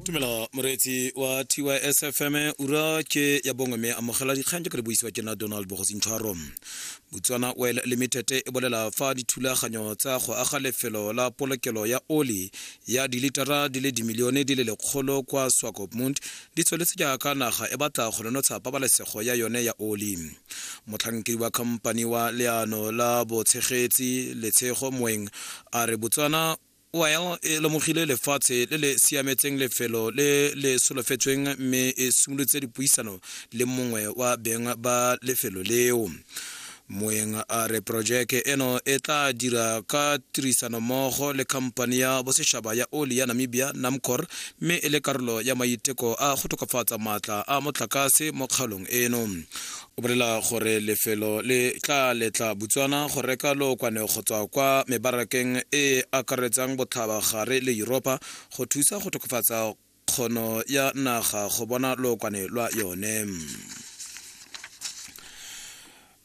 tumelo moreetsi wa tys fm ura ke ya bongwe mme amogela dikgang jaaka di buisiwa ke na donald bogosintshwaro botswana oil limited e bolela fa dithulaganyo tsa go aga lefelo la polokelo ya oli ya dilitara di le dimilione di le lekgolo kwa swakopmund di tsweletse jaaka naga e batla go nonotsha pabalesego ya yone ya oli motlhankedi wa khamphani wa leano la botshegetsi letshego moeng a re botswana Oil e lemogile lefatshe le le siametseng lefelo le le solofetsweng mme e simolotse dipuisano le mongwe wa beng ba lefelo leo moeng a re porojeke eno e tla dira ka tirisanommogo le khamphani ya bosetšhaba ya oli ya namibia namcor mme e le karolo ya maiteko a go tokafatsa maatla a motlakase mo kgaolong eno o bolela gore lefelo le tla letla botswana go reka lookwane go tswa kwa mebarakeng e e akaretsang botlhabagare le europa go thusa go tokafatsa kgono ya naga go bona lookwane lwa yone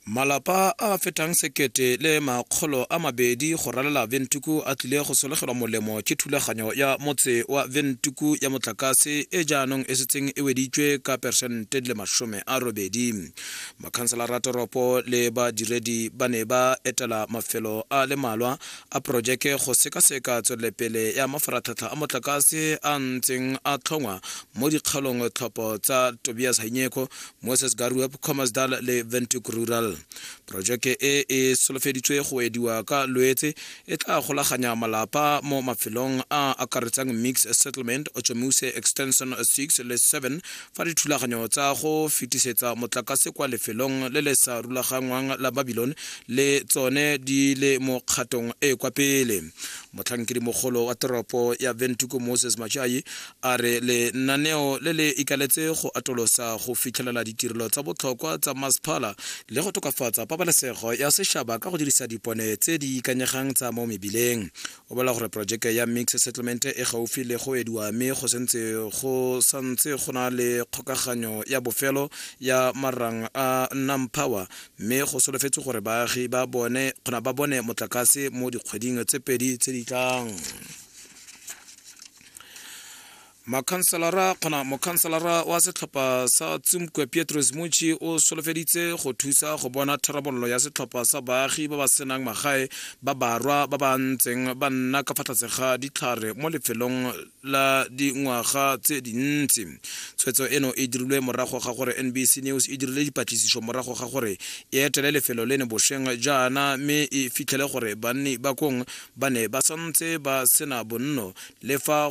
malapa a fetang sekete le makgolo a mabedi go ralela ventuku a tlile go solegelwa molemo ke thulaganyo ya motse wa ventuku ya motlakase e jaanong e setseng e weditswe ka peresente le masome a robedi makhanselara a toropo le badiredi ba ne ba etela mafelo a le malwa a porojeke go sekaseka tswelelepele ya mafaratlhatlha a motlakase a ntseng a tlhongwa mo dikgaolong tlhopho tsa tobias hanyeko moses garuep comasdal le ventuk rural porojeke e e solofeditswe go ediwa ka loetse e tla golaganya malapa mo mafelong a akaretsang mix settlement ochomuse extension 6 le 7 fa dithulaganyo tsa go fetisetsa motlakase kwa lefelong le le sa rulagangwang la babilone le tsone di le mo kgatong e e kwa pele motlhankedimogolo wa teropo ya ventuko moses machai a re lenaneo le le ikaletse go atolosa go fitlhelela ditirelo tsa botlhokwa tsa masephala le go tokafatsa pabalesego ya setšhaba ka go dirisa dipone tse di ikanyegang tsa mo mebileng o bolela gore projeke ya mix settlement e gaufi le go ediwa mme go sentse go santse go na le kgokaganyo ya bofelo ya marang a nam power mme go solofetse gore baagi ba bone kgona ba bone motlakase mo dikgweding tse pedi tse di tlang mokhanselara wa setlhopha sa tsumkwe pietros muchi o solofeditse go thusa go bona tharabololo ya setlhopha sa baagi ba ba senang magae ba barwa ba ba ntseng ba nna ka fa tlase ga ditlhare mo lefelong la dingwaga tse dintsi tshwetso eno e dirilwe morago ga gore nbc news e dirile dipatlisiso morago ga gore e etele lefelo leno bosheng jaana mme e fitlhele gore banni ba kong ba ne ba santse ba sena bonno le fa